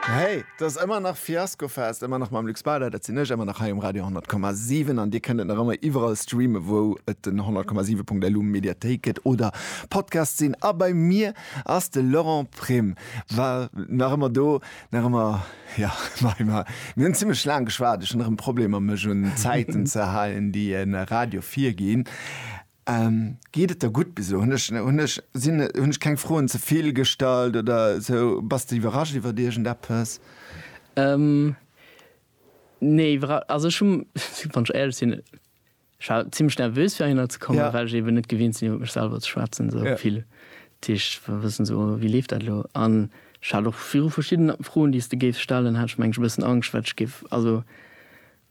Hey, et ass ëmmer nach Fiaskofest, ëmmer nach mam Luc Spader, dat sinn ech, ëmmer nach hei um Radio 10,7 an Dir kënnt et nach ëmmer iwwerall streamen, wou et den 10,7.lu Mediathéik gëtt oder Podcast sinn. A bei mir ass de Laurent Prim, war nach ëmmer do, nach ëmmer ja, mei mar mir hunn zimmlech laang geschwat, ech hunn erëm Problemer mech un d'Zäiten ze halen, déi e Radio virginn. Geet et der gutt bis elo? Hunn ech, hunn ech, sinn, hunn ech keng Froen ze vill gestallt oder sou? Bass de iwwerrascht iwwert iergendeppes? Nee, iwwerra, also ech hu, wann ech éierlech sinn, ech war zimmlech nervös fir heihinner ze kommen, well ech eben net gewinnt sinn iwwer mech selwer ze schwätzen sou vill. Dat heescht, wëll wëssen sou wéi leeft dat elo? An ech hat och viru verschidden Froen déi s de géifs stellen, hat ech mengen ech e bëssen Angscht wat ech géif, also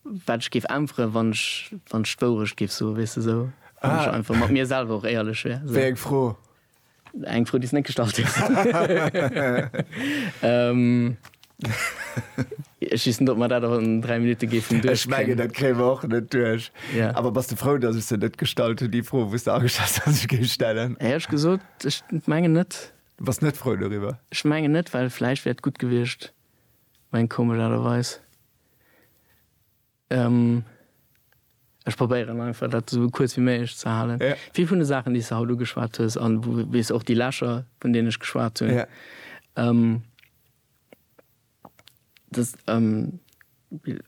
Wat ech géif äntweren, wann ech, wann ech d'Wourecht géif soen, weess de, esou, wann ech einfach mat mir selwer och éierlech wär, esou. Wéi eng Fro? Eng Fro, déi s de net gestallt hues. Ech weess net, ob mer dat och an dräi Minutte géifen duerchkréien. Ech mengen, dat kréie mer och net duerch. Ja. Awer bass de frou, datt ech se net gestallt hunn, déi Fro, wou s de ageschat hues, datt ech se géif stellen? Hei hu ech gesot, ech mengen net. Du bass net frou doriwwer? Ech mengen net, well vläicht wär et gutt gewiescht, meng komesch Aart a Weis. Ech probéieren einfach dat esou kuerz wéi méiglech ze halen. Ja. Vill vun de Saachen déi s de haut ugeschwat hues an wou wéi s och déi Lächer vun deenen ech geschwat hunn. Ja. Dës Bild,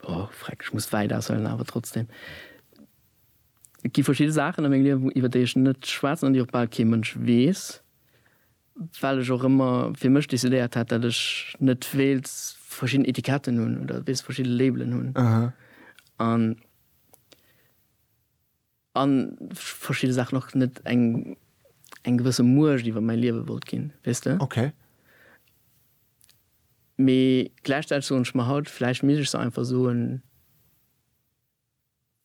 oh freck ech muss wäit aushuelen awer trotzdem. Et gi verschidde Saachen a mengem Liewen iwwer déi ech net schwätzen an déi och bal kee Mënsch weess. Well ech och ëmmer fir mech decidéiert hat, datt ech net wéilt verschidden Etiketten hunn oder wéilt verschidde Labelen hunn an a verschidde Saachen och net eng eng gewësse Muecht iwwer mäi Liewe wollt ginn, weess de. Mee gläichzäiteg soen ech mer haut, vläicht misst ech se einfach soen.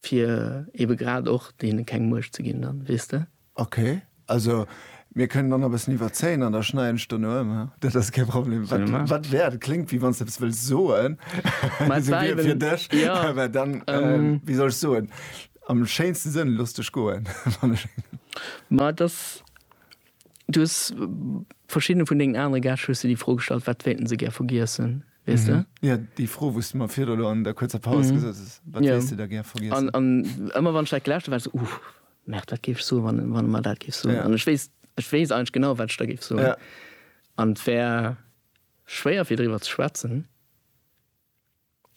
Fir ebe grad och deene keng Muecht ze ginn dann, weess de? Ok, also mir kënnen dann nach e bëssen iwwerzéien an da schneiden ech dono ëm, haa? Dat ass kee Problem. Wat, wat wär, dat kléngt wéi wann s de eppes wëlls soen, esou wéi fir dech, mä dann, wéi soll ech soen, am schéinste Sënn, looss dech goen, wann ech. Ma et ass Du hues verschiddene vun dengen anere Gäscht hues de déi Fro gestallt, wat wéilten se gär vergiessen, weess de? Jo, déi Fro, wou s de mer virdru elo an der kuerzer Paus gesot hues, wat wéilts de da gär vergiessen? An ëmmer wann ech dat gelauschtert hat, war et esou, uh, Märt, wat géif ech soen, wann en mer dat géif soen? An ech weess, ech weess eigentlech genau, wat ech da géif soen. An et wär schwéier fir driwwer ze schwätzen.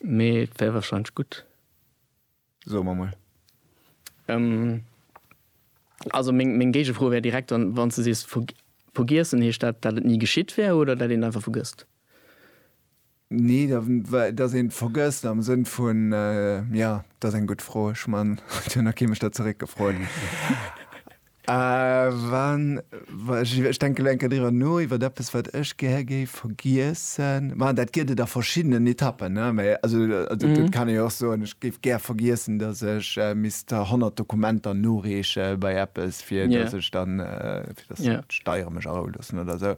Mee et wär wahrscheinlech gutt. Soe mer mol. Ehm, also meng, meng Géigefro wär direkt dann, wann s de sees ver, vergiessen, heescht dat, dat et ni geschitt wär oder dat een einfach vergësst? Nee, da, well, dass een et vergësst am Sënn vun, ja, dat ass eng gutt Fro. Ech man, et huet nach kee mech dat zeréckgefrot. Wann, ech denke elo eng Kéier driwwer no, iwwer eppes, wat ech gär géif vergiessen. Ma dat gëtt et a verschiddenen Etappen, ne? Mä also dat kann ee jo och soen, ech géif gär vergiessen, datt ech misst 100 Dokumenter noreeche bei eppes, fir datt ech dann, fir datt d'Steiere mech aroulossen oder esou,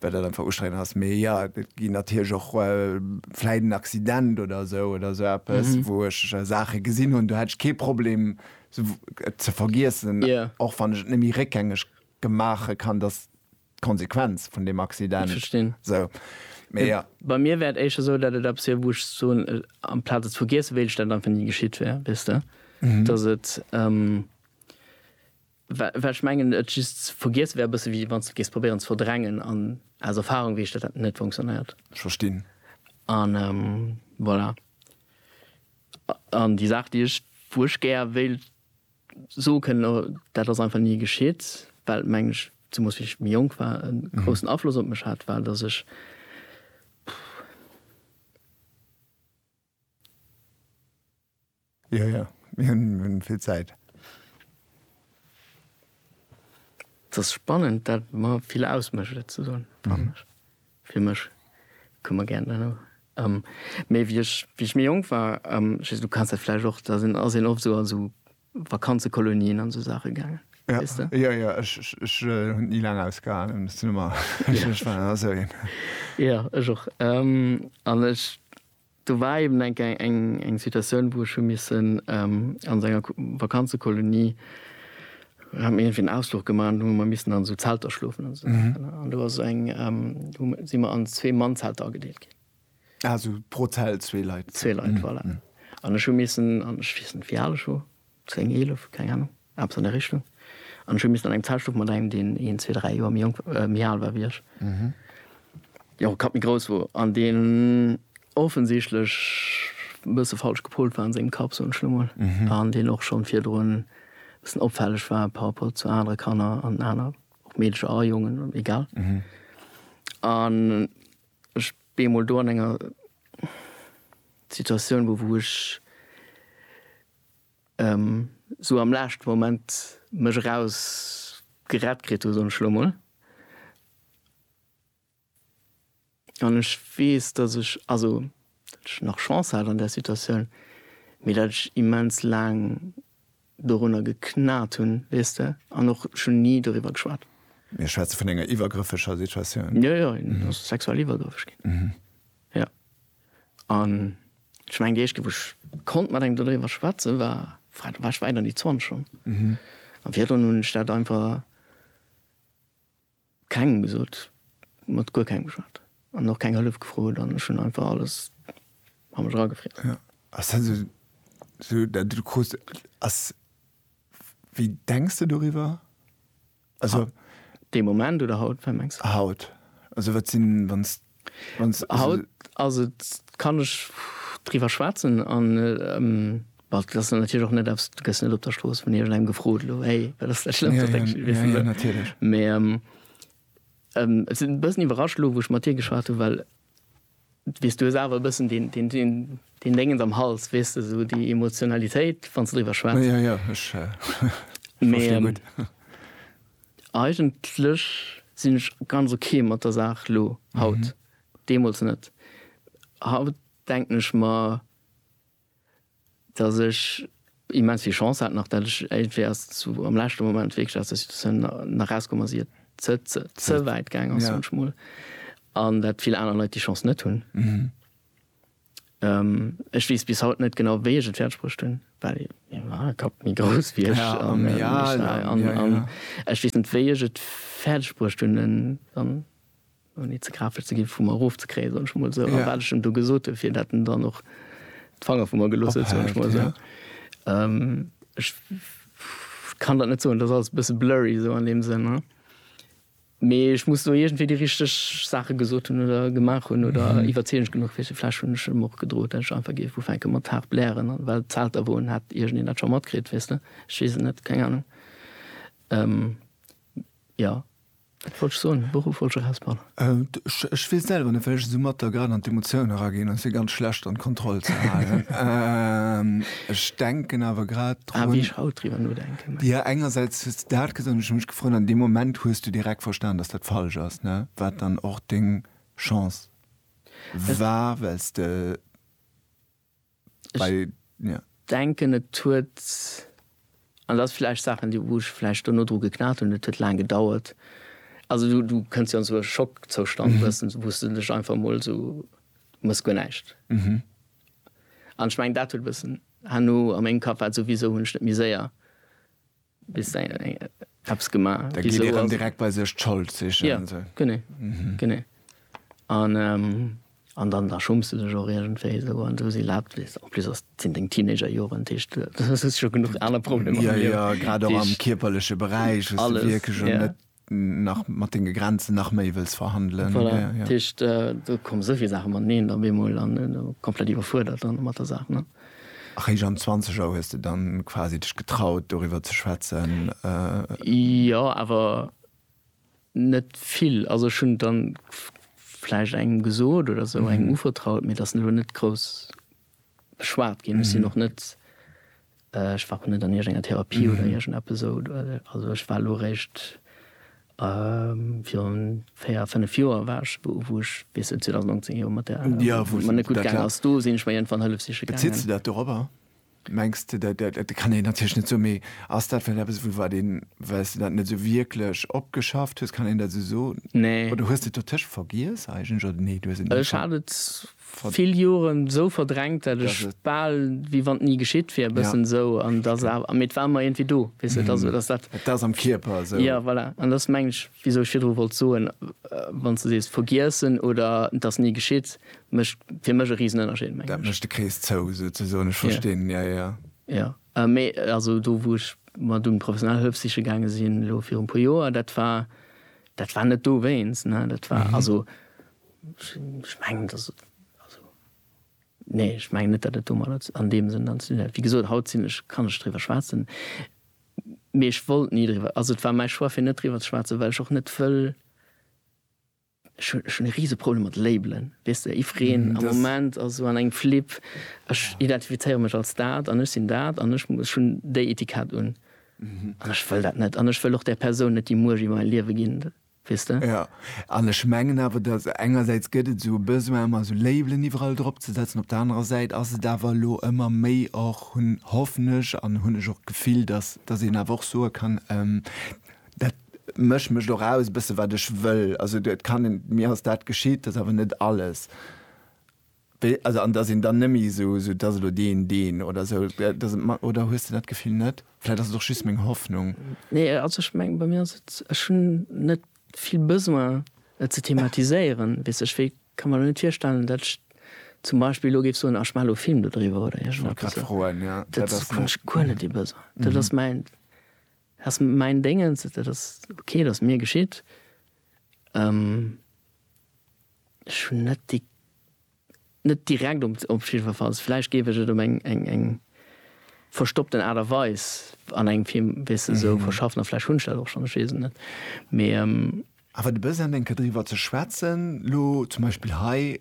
well dat einfach ustrengend ass. Mee jo, et ginn natierlech och vläicht en Accident oder esou oder esou eppes, wou ech Saache gesinn hunn, do hätt ech kee Problem, ze vergiessen, och wann ech et net méi réckgängeg maache kann, dass d'Konsequenz vun deem Accident esou. Mee jo. Bei mir wär et éischer esou, datt et eppes wier, wou ech soen, amplaz et ze vergiessen, wéilt ech, datt et einfach ni geschitt wär, weess de? Datt et, well ech mengen, et just ze vergiessen wär e bësse wéi wann s de et géifs probéieren ze verdrängen an aus Erfarung weess ech, datt dat net funktionéiert. Ech verstinn. An voilà. An déi Saach, déi ech, wou ech gär wéilt soe kënnen, dat ass einfach ni geschitt, well, mengen ech, zemoos wéi ech méi jonk war, e groussen Afloss op mech hat, war, datt ech Spannend, dat mer vill ausmécht, et ze soen, fannen ech. Fir mech koum mer gären dann och. Mee wéi ech wéi ech méi jonk war, just du kanns dat vläicht och, da sinn ass een oft esou an esou Vakanzekolonien an esou Saache gaangen, weess de? Jo, jo, ech ech hunn et ni laang ausgehalen, ech sinn ëmmer ech ech war ëmmer esou een. Jo, ech och. An ech. Do war eben eng Kéier eng Situatioun, wou ech hu missen an enger Vakanzekolonie, haten mir iergendwéi en Ausfluch gemaach an do hu mer missen an esou Zelter schlofen an esou Saachen. An do ass eng, hu mer, si mer an zwee Mannzelter agedeelt ginn. Ah, esou pro Zelt zwee Leit. Zwee Leit, voilà. An ech hu missen, an ech weess net, wéi al ech wor, 10, 11, keng Ahnung, eppes an där Richtung. An ech hu missen an engem Zelt schlofen mat engem, deen een, zwee, dräi Joer méi jonk, méi al war wéi ech, deen och e Kapp méi grouss wor an deen offensichtlech e bësse falsch gepolt war an sengem Kapp, soen ech elo mol, an deen och schonn virdrun e bëssen opfälleg war par rapport zu anere Kanner an aner, ob Meedercher a Jongen, egal. An ech bee mol do an enger Situatioun, wou ech esou am laeschten Moment mech eraus gerett kritt hu soen ech elo mol, an ech weess dass ech, also dat ech nach Chance hat an där Situatioun, mee dat ech immens laang dorunner geknat hunn, weess de, an och ech hunn ni doriwwer geschwat. Mir schwätze vun enger iwwergrëffeger Situatioun? Jo jo, en ass sexuell iwwergrëffeg ginn, jo. An ech mengen, déi éischt Kéier, wou ech konnt mat engem doriwwer schwätzen, war, da war ech wäit an déi Zwanzeg schonn. An virdrun hunn ech dat einfach kengem gesot, mat guer kengem geschwat an och keng Hëllef gefrot an ech hunn einfach alles a mech eragefriess. Ass dat esou, esou dat, wat du krut ass, wéi denks de doriwwer? Also. Dee Moment oder haut, wat mengs de? Haut. Also wat sinn, wann s, wann s. Haut ass et, kann ech driwwer schwätzen an, well et ass natierlech och net eppes, du gëss net op der Strooss vun iergendengem gefrot, elo héi, wat ass dat Schlëmmst, wat denkst du? Weess de? Mee et sinn e bëssen iwwerrascht elo, wou ech mat dir geschwat hunn, well. Weess, du hues awer e bëssen deen Déngens am Hals, weess de, esou déi Emotionalitéit, wann s de driwwer schwätz. Jo, jo, ech verstinn gutt. Mee eigentlech sinn ech ganz ok mat der Saach elo, haut. Deemools net. Haut denken ech mer, dass ech immens vill Chance hat nach, dat ech iergendwéi erst zu am leschte Moment wierklech aus der Situatioun nach rauskomm ass, ier et ze wäit gaang ass, soen ech mol, an dat vill aner Leit déi Chance net hunn. Ech weess bis haut net genau, wéi ech et fäerdeg bruecht hunn, well mäi Kapp méi grouss wier ech an ech weess net, wéi ech et fäerdeg bruecht hunn, en ouni ze grafesch ze ginn, vu mer erof ze kréien, soen ech mol esou, a wat ech em do gesot hunn, fir datt en dann och d'Fanger vu mer gelooss huet, soen ech mol esou. Ech kann dat net soen, dat ass alles e bësse blurry esou an deem Sënn. Mee ech muss do iergendwéi déi richteg Saache gesot hunn oder gemaach hunn oder iwwerzeegend genuch fir se. Vläch hunn ech em och gedroot, datt ech einfach géif ufänke mat haart blären, an well d'Zelt da woen, hätt iergendeen dat scho matkritt, weess de. Ech weess et net, keng Anung. Jo, Wat wollt ech soen? De Beruff wollt ech erausbannen. Ech weess selwer net, well ech esou matt da grad an d'Emotioun eraginn, an et wier ganz schlecht an d'Kontroll ze halen. Ech denken awer grad drun. A wéi ech haut driwwer nodenken. Jo, engersäits hues de dat gesot, an ech hu mech gefrot, an deem Moment hues du direkt verstan, datt dat falsch ass, ne? Wat dann och deng Chance war, well s de. Ech denken, et huet, an dat ass vläicht Saachen, déi, wou ech vläicht duerno dru geknat hunn, et huet laang gedauert. Also du, du kënns jo an esou e Schockzoustand, wou s du dech einfach emol esou, du mëss guer näischt. An ech mengen, dat huet e bëssen herno, a mengem Kapp war et souwisou, hunn ech net méi séier. Hues de eppes gemaach? Da geet ee rëm direkt bei sech d'Schold sichen. Jo, genee, genee. An dann, da schumms de dech och iergendwéi esou an esou. Si laacht, weess de. En plus ass, sinn deng Teenagerjoren, dat heescht, du hues scho genuch aner Problemer am Liewen. Jo, jo, grad och am kierperleche Beräich hues de wierklech och net nach mat denge Grenzen nach méi wëlls verhandelen. Voilà, dat heescht, do komme sou vill Saache mateneen op eemol an komplett iwwerfuerdert dann mat der Saach, ne? Eréischt am Zwanzeger hues de dann quasi dech getraut, doriwwer ze schwätzen? Jo, awer net vill. Also ech hunn et dann vläicht engem gesot oder sou, engem uvertraut, mee et ass elo net grouss. beschwat ginn. Ech sinn och net, ech war och net an iergengenger Therapie oder iergendeppes esou. Also ech war elo eréischt virun véier, fënnef Joer war ech, wou ech bis 2019 jo mat där, wou et mer net gutt gaangen ass, do sinn ech mer iergendwann Hëllef siche gaangen. Beziss de dat dorobber? Mengs de, dat kann een natierlech net soen, mee ass dat vläicht eppes, wou wat een, well s de dat net esou wierklech opgeschafft hues, kann een dat esou soen? Nee. Oder hues de et dotëscht vergiess eigentlech, oder nee, du hues et net. Ech hat et vill Joren esou verdrängt dat ech bal wéi wann et ni geschitt wier e bëssen esou an dass awer mee et war mer iergendwéi do weess de et ass esou dass dat et ass am Kierper esou jo voilà an dat ass mengen ech wisou ech virdru wollt soen wann s de sees vergiessen oder et ass ni geschitt mécht fir mech e Risenënnerscheed mengen ech dat mécht de Krees zou souzesoen ech verstinn jo jo jo jo mee also do wou ech mer dunn professionell Hëllef siche gaange sinn elo virun puer Joer dat war dat war net dowéinst ne dat war also Ech mengen, dass et, also nee, ech mengen net, datt et domadder an deem Sënn dann ze dinn hätt. Wéi gesot, haut sinn ech, kann ech driwwer schwätzen, mee ech wollt ni driwwer, also et war mäi Choix fir net driwwer ze schwätzen, well ech och net wëll, ech hunn, ech hunn e Riseproblem mat Labelen, weess de, jiddwereen am Moment ass esou an engem Flip, ech identifizéiere mech als dat an ech sinn dat an ech, ech hunn déi Etikett un an ech wëll dat net an ech wëll och där Persoun net déi Muecht iwwer mäi Liewe ginn. weess de? Jo, an ech mengen awer, dass engersäits gëtt et esou e Besoin ëmmer esou Labelen iwwerall drop ze setzen, op der anerer Säit ass et awer elo ëmmer méi och, hunn, hoffen ech an hunn ech och d'Gefill, dass dass een awer och soe kann, dat mécht mécht och aus e bësse wat ech wëll. Also et kann een, mir ass dat geschitt, dat ass awer net alles. Also an dass een dann nëmme esou esou, dass elo deen, deen oder esou, dass et mat, oder hues de dat Gefill net? Vläit ass et och just meng Hoffnung. Nee, also ech mengen, bei mir ass et, ech hunn net vill Besoin et ze thematiséieren, weess ech, wéi ka mer elo net virstellen, datt ech zum Beispill elo géif soen, ah ech maachen elo e Film dodriwwer oder iergend eppes. Wollt grad froen, ja. Dat ass, hunn ech guer net dee Besoin. Dat ass mäin, ass mäin Déngens, dat ass ok, dat ass mir geschitt. Ech hunn net déi, net direkt op jiddwerfalls. Vläicht géif ech et op eng, eng, eng verstoppten Aart a Weis an engem Film, weess de, esou verschaffen. A vläicht hunn ech dat och schonn, ech weess et net. Mee. Awer de Besoin, eng Kéier driwwer ze schwätzen, elo zum Beispill hei,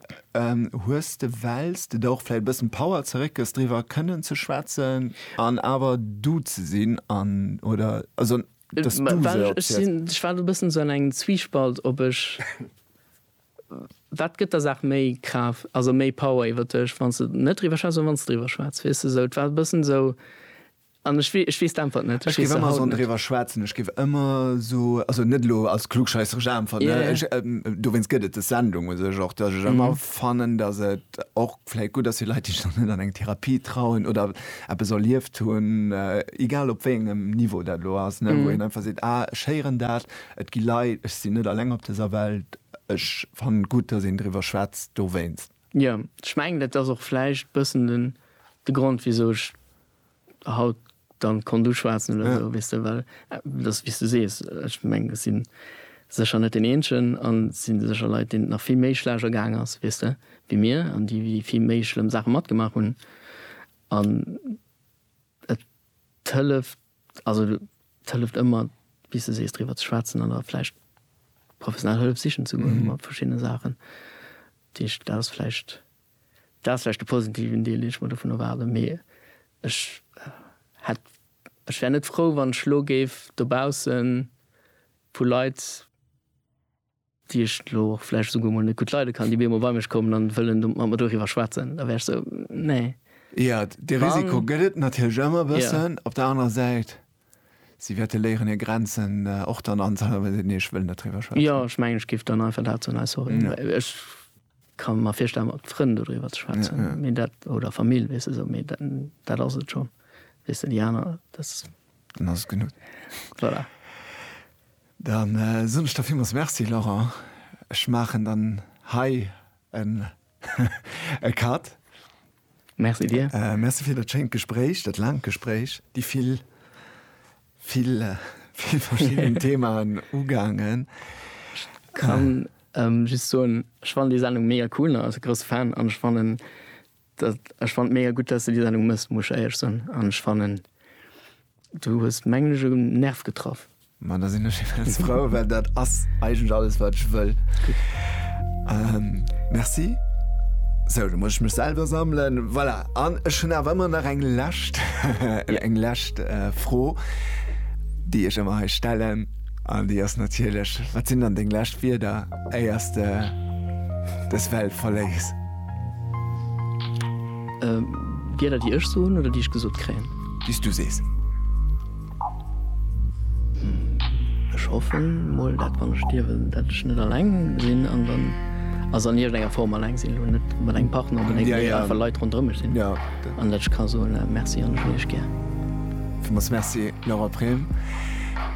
hues de, wells de der och vläicht e bëssen Power zeréckgëss, driwwer kënnen ze schwätzen an awer du ze sinn an, oder? Also. dass du se erziels. Ech war elo e bëssen esou an engem Zwiespalt, ob ech, wat gëtt der Saach méi Kraaft, also méi Power iwwer dech, wann s de net driwwer schwätz oder wann s de driwwer schwätz, weess de esou? Et war e bëssen esou an ech wee, ech weess d'Äntwert net. Ech géif ëmmer esou driwwer schwätzen, ech géif ëmmer esou, also net elo als klugscheisseresch Äntwert, ech, dowéinst gëtt et des Sendung u sech och, dass ech ëmmer fannen, dass et och, Vläit gutt ass fir Leit, déi sech nach net an eng Therapie trauen oder eppes erlieft hunn, egal op wéi engem Niveau dat elo ass, wou een einfach seet, ah ech héieren dat, et gi Leit, ech sinn net alleng op dëser Welt, ech fannen et gutt, dass een driwwer schwätzt dowéinst. Jo, ech mengen dat ass och vläicht bëssen de Grond wisou ech Haut dann konnt du schwaatzen oder sou weess de, well et ass wéis du sees, ech mengen ech sinn sécher net deen eenzegen an et sinn sécher Leit deenen et nach vill méi schlecht ergaang ass weess de wéi mir an déi wéi vill méi schlëmm Saachen matgemaach hunn an et hëlleft also et hëlleft ëmmer wéis de sees driwwer ze schwaatzen an da vläicht professionell Hëllef sichen ze goen mat verschiddene Saachen. Deesch dat ass vläicht. Dat ass vläicht de positiven Deel, deen ech mer dovun erwaarden. Mee ech hätt, ech wär net frou, wann ech elo géif dobausse vu Leit, déi ech elo och vläicht esouguer emol net gutt leide kann, déi op eemol bei mech kommen a wëllen mat mer doriwwer schwätzen. Da wär ech esou, nee. Jo, dee Risiko gëtt et natierlech ëmmer e bëssen. Op der anerer Säit, si wäerte léieren, hir Grenzen och dann anzehalen, wa si den Eeschwëll net driwwer schwätzen. Jo, ech mengen, ech géif dann einfach dat soen, Hey, sorry, ech Kann mer virstellen mat Frënn do driwwer ze schwätzen ja, ja. mee dat oder Famill wees du sou mee dat, dat ass et scho wees du déi aner dat dann ass genug voilà. Dann äh, soen ech der villmools Merci Laurent. Ech maachen dann hei en e Cut. Merci dir. Äh, merci fir dat schéint Gespréich, dat laangt Gespréich, déi vill Vill verschidden Themaen ugaangen. Ech kann just soen, ech fannen déi Sendung mega cool an als grousse Fan an ech fannen dat, ech fannen et mega gutt dat s de déi Sendung mëss, muss ech éierlech soen an ech fannen du hues mengen ech um Nerv getraff. Ma da sinn ech immens frou, well dat ass eigentlech alles wat ech wëll. Merci. Sou, da muss ech mech selwer sammelen, voilà. An ech hunn awer ëmmer nach eng lescht eng lescht äh, Fro, déi ech ëmmer hei stellen. An déi ass natierlech, wat sinn dann deng lescht Wierder, éier s de dës Welt verléiss? Wierder, déi ech soen oder déi ech gesot kréien? Déi s du sees. Ech hoffen mol dat wann ech stierwen dat ech net alleng sinn an dann also an iergend enger Form alleng sinn, elo net mat engem Partner oder néngem, mee einfach Leit ronderëm mech sinn an dat ech ka soen Merci an ech hunn iech gär. Villmools Merci Laura Prem.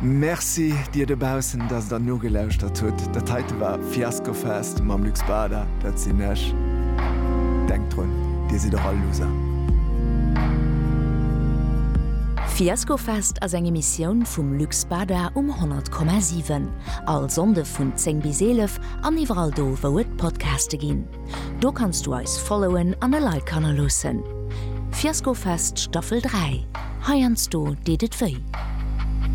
Merci dir dobaussen, dass der nogelauschert hutt. Dat heite war. Fiasco Fest mam Luc Spada, dat sinn ech. Denkt drun, Dir sidd och all Loser. Fiasco Fest ass eng Emissioun vum Luc Spada um 100,7. All Sonnde vun 10 bis 11 an iwwerall do wou et Podcaste ginn. Do kanns du eis followen an e Like hannerloossen. Fiasco Fest Staffel 3, heiansdo deet et wéi.